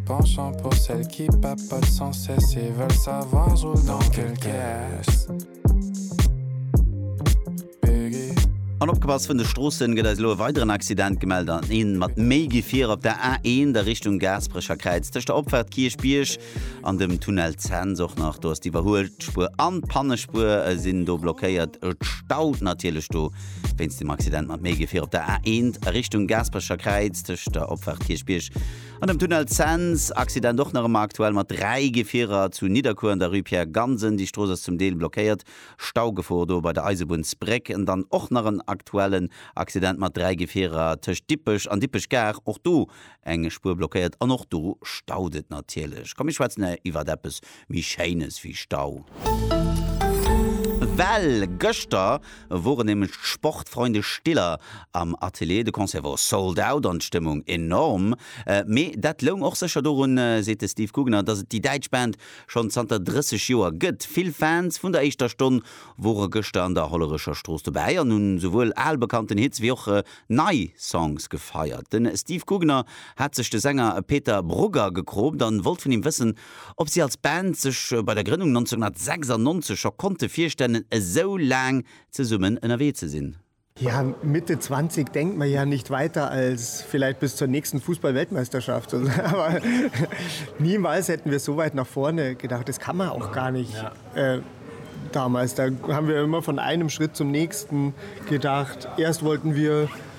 Penchant pour celles qui papotent sans cesse et veulent savoir je roule dans quelle caisse An opgepasst vun de Stroossen, gëtt eis elo e weideren Accident gemellt an een mat méi Gefier op der A1 a Richtung Gaasperecherkräiz. Tëscht der Opfahrt Kierchbierg an dem Tunnel Zens och nach. Do ass d'Iwwerhuelspuer an d'Pannespuer sinn do blockéiert. Et staut natierlech do wéinst dem Accident mat méi Gefier op der A1 a Richtung Gaasperecherkräiz tëscht der Opfahrt Kierchbierg An dem Tunnel Cents, Accident och nach ëmmer aktuell mat 3 Gefierer zu Nidderkuer an der Rue Pierre Gansen. Déi Strooss ass zum Deel blockéiert. Staugefor do bei der Eisebunnsbréck. An dann och nach en aktuellen Accident mat 3 Gefierer tëscht Dippech an Dippech Gare. Och do eng Spuer blockéiert an och do staut et natierlech. Komm mir schwätzen iwwert eppes méi Schéines wéi Stau. Well gëschter woren nämlech d'Sportfreunde Stiller am Atelier. De Concert wor sold out an d'Stëmmung enorm. Mee dat loung och sécher dorun, seet de Steve Gugner, dass et déi däitsch Band schonn zanter 30 Joer gëtt. Vill Fans vun der éischter Stonn wore gëschter an der Hollerecher Strooss dobäi an hunn souwuel al bekannten Hits wéi och nei Songs gefeiert. De Steve Gugner hat sech de Sänger Peter Brugger gekropt an wollt vun him wëssen, ob si als Band sech bei der Grënnung 1996 scho konnte virstellen, esou laang zesummen ënnerwee ze sinn. Ja, Mitte 20 denkt man ja nicht weiter als vielleicht bis zur nächsten Fußball-Weltmeisterschaft. Aber niemals hätten wir so weit nach vorne gedacht. Das kann man auch gar nicht damals. Da haben wir immer von einem Schritt zum nächsten gedacht. Erst wollten wir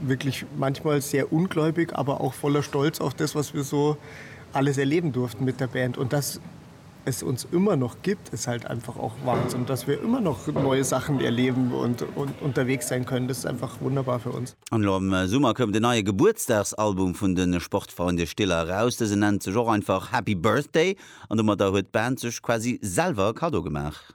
wirklich manchmal sehr ungläubig, aber auch voller Stolz auf das, was wir so alles erleben durften mit der Band und dass es uns immer noch gibt, ist halt einfach auch Wahnsinn, dass wir immer noch neue Sachen erleben und, und unterwegs sein können. Das ist einfach wunderbar für uns. An elo am Summer koum den neie Gebuertsdagsalbum vun de Sportfreunde Stiller eraus. Dësen nennt sech och einfach Happy Birthday an domadder huet d'Band sech quasi selwer e Kaddo gemaach.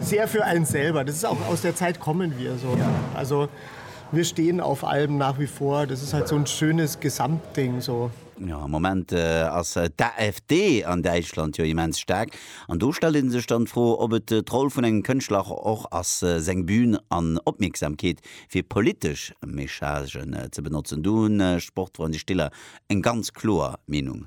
Sehr für einen selber, das ist auch aus der Zeit kommen wir so. Also wir stehen auf allem nach wie vor, das ist halt so ein schönes Gesamtding so. Jo, am Moment ass d'AfD an Däitschland jo immens staark an do stellt ee sech dann d'Fro, ob et d'Roll vun engem Kënschtler och ass, seng Bühn an Opmierksamkeet fir politesch Messagen ze benotzen. Do hunn d'Sportfreunde Stiller eng ganz kloer Meenung.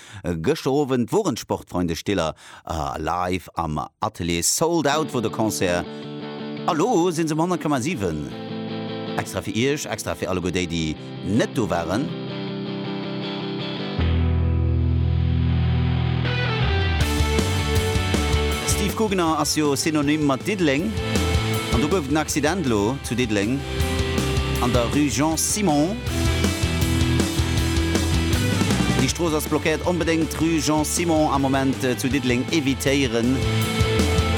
Gëschter Owend woren d'Sportfreunde Stiller live am Atelier. Sold out wor de Concert a lo sinn se um 100,7. Extra fir iech, extra fir alleguer déi déi net do waren. Steve Gugner ass jo Synonym mat Diddeleng an do gouf et en Accident elo zu Diddeleng. an der Rue Jean Simon. Déi Strooss ass blockéiert. Onbedéngt d'Rue Jean Simon am Moment zu Diddeleng evitéieren.